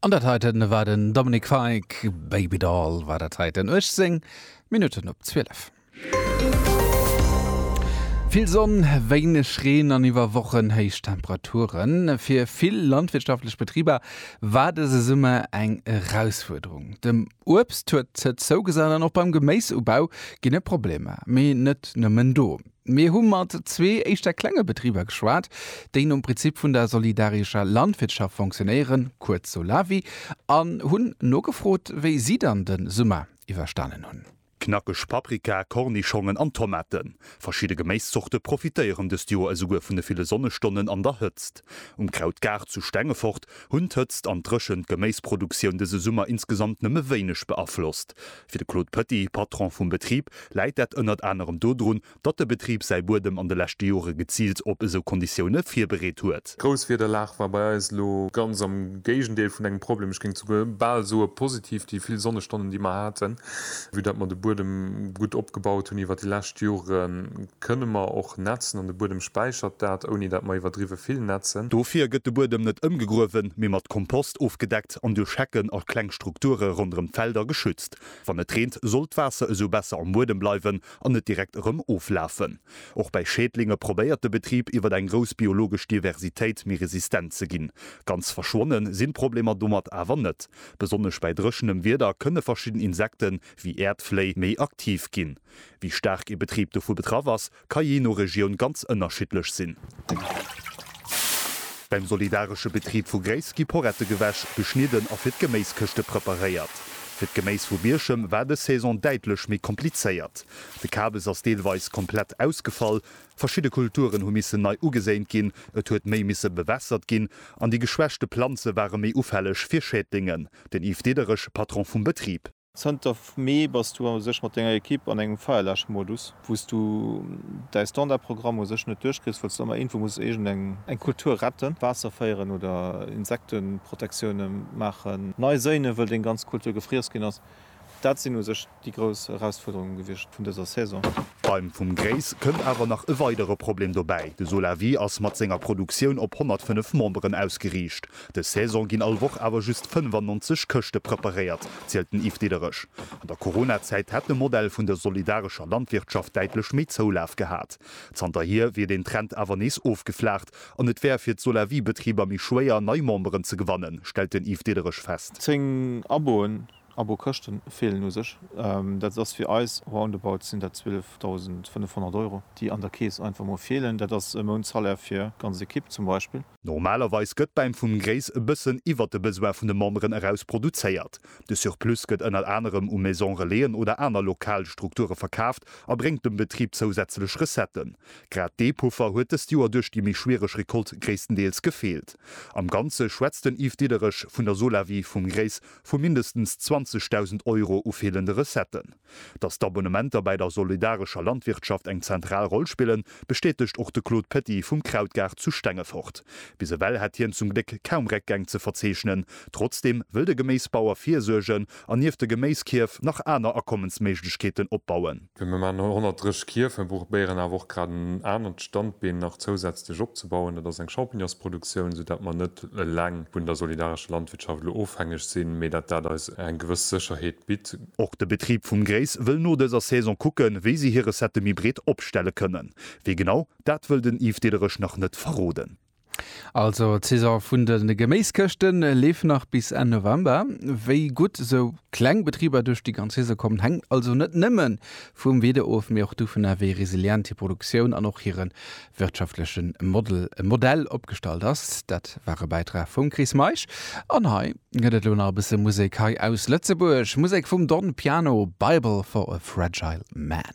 An dat heiten war den Dominic Fike, Baby Doll war dat heiten, 18 Minutten op 12. Vill Sonn, wéineg Reen an iwwer Wochen héich Temperaturen. Fir vill landwirtschaftlech Betriber war dëse Summer eng Erausfuerderung. Dem Uebst huet d'Hëtzt zougesat an och beim Geméisubau ginn et Problemer. Mee net nëmmen do. Mir hu mat zwee éischter klenge Betriber geschwat, déi nom Prinzip vun der solidarischer Landwirtschaft fonctionnéieren, kuerz Solawi, an hunn nogefrot, wéi si dann de Summer iwwerstanen hunn. Knackeg Paprika, Kornischongen an Tomaten, verschidde Geméiszorte profitéieren dëst Joer esouguer vun de ville Sonnestonnen an der Hëtzt. Um Krautgaart zu Stengefort hunn d'Hëtzt an d'Dréchent d'Geméisproduktioun dëse Summer insgesamt nëmme wéineg beaflosst, Fir de Claude Petit, Patron vum Betrib, läit dat ënnert anerem dodrun, datt de Betrib säi Buedem an de leschte Jore geziilt op esou Konditioune virbereet huet. D'Grousswiederlag war bei eis elo ganz am Géigendeel vun engem Problem, ech géing souguer bal soe positiv, déi vill Sonnestonnen, déi mer haten, vue datt mer de Buedem gutt opgebaut hunn iwwer déi lescht Jore kënne mer och nätzen an de Buedem späichert dat, ouni datt mer iwwerdriwwe vill nätzen. Dofir gëtt de Buedem net ëmgegruewen, mee mat Kompost ofgedeckt. verdeckt an duerch Hecken a kleng Strukture ronderëm d'Felder geschützt. Wann et reent, soll d'Waasser esou besser am Buedem bleiwen an net direkt erëm oflafen. Och bei Schädlinge probéiert de Betrib iwwer eng grouss biologesch Diversitéit méi resistent ze ginn. Ganz verschwonne sinn d'Problemer domat awer net. Besonnesch bei dréchenem Wieder kënne verschidden Insekten, wéi Äerdfléi, méi aktiv ginn. Wéi staark ee Betrib dovu betraff ass, Ka jee no Regioun ganz ënnerschiddlech sinn. Beim solidaresche Betrib vu Gréiss gi Porette gewäsch, geschnidden a fir d'Geméiskëschte preparéiert. Fir d'Geméis vu Bierchem war dës Saison däitlech méi komplizéiert. De Kabes ass deelweis komplett ausgefall, verschidde Kulturen hu missen nei ugeséint ginn, et huet méi misse bewässert ginn an déi geschwächte Planze ware méi ufälleg fir Schädlingen. Den Yves Diederich, Patron vum Betrib. Zënter Mee bass du u sech mat denger Ekipp an engem Feierläschmodus. Wou s du däi Standardprogramm u sech net duerchkriss, wëlls du ëmmer iergendwou muss iergend eng Kultur retten, d'Waasser féieren oder Insekteprotektioune maachen. Nei séine wëll deng ganz Kultur gefriess ginn ass. Dat sinn u sech déi grouss Erausfuerderunge gewiescht vun dëser Saison. Beim Vum Gréiss kënnt awer nach e weidere Problem dobäi, de Solawi ass mat senger Produktioun op 105 Memberen ausgeriicht. Dës Saison ginn all Woch awer just 95 Këschte preparéiert, zielt den Yves Diderich. An der Corona-Zäit hätt de Modell vun der solidarescher Landwirtschaft däitlech méi Zoulaf gehat. Zanterhier wier den Trend awer nees ofgeflaacht an et wär fir d'Solavie-Betriber méi schwéier, nei Memberen ze gewannen, stellt den Yves Diderich fest. Zéng Aboen, Abo-Këschte feelen u sech. Dat ass fir eis, roundabout sinn dat 12.500 Euro, déi an der Keess einfach mol feelen. Dat ass e Mountsalaire fir ganz Ekipp zum Beispill. Normalerweis gëtt bäim vum Gréis e bëssen iwwert de Besoin vun de Memberen eraus produzéiert. De Surplus gëtt ënnert anerem u Maison Relaisen oder aner lokal Strukture verkaaft a bréngt dem Betrib zousätzlech Recetten. Grad dee Puffer huet dëst Joer duerch déi méi schwiereg Recolte gréisstendeels gefeelt. Am Ganze schwätzt den Yves Diederich vun der Solawi vum Gréis vu mindestens 20.000 Euro u feelende Recetten. Dass d'Abonnementer bäi der solidarescher Landwirtschaft eng zentral Roll spillen, bestätegt och de Claude Petit vum Krautgaart zu Stengefort. Bis ewell hätt hien zum Gléck kaum Réckgäng ze verzeechnen. Trotzdeem wëll de Geméisbauer virsuergen an nieft de Geméiskierf nach aner Akommensméiglechkeeten opbauen. Wéi mir man 130 Kierf, mir probéieren awer och grad en anert Standbeen nach zousätzlech opzebauen, dat ass eng Champignonsproduktioun, sou dat mer net eleng vun der solidarescher Landwirtschaft elo ofhängeg sinn, mee dat dat eis eng gewëss Sécherheet bitt. Och de Betrib vum Grace wëll no dëser Saison kucken, wéi si hir Recettë méi breet opstelle kënnen. Wéi genau, dat wëll den Yves Diederich nach net verroden. Also d'Saison vun de Geméiskëschte leeft nach bis Enn November. Wéi gutt esou kleng Betriber duerch déi ganz Saison kommen, hänkt also net nëmme vum Wieder of, mee och dovunner, wéi resilient hir Produktioun an och hire wirtschaftleche Modell opgestallt ass. Dat war e Bäitrag vum Chris Meisch an hei. Gëtt et lo nach e bësse Musek hei aus Lëtzebuerg, Musek vum Don Piano, Bible for a Fragile Man.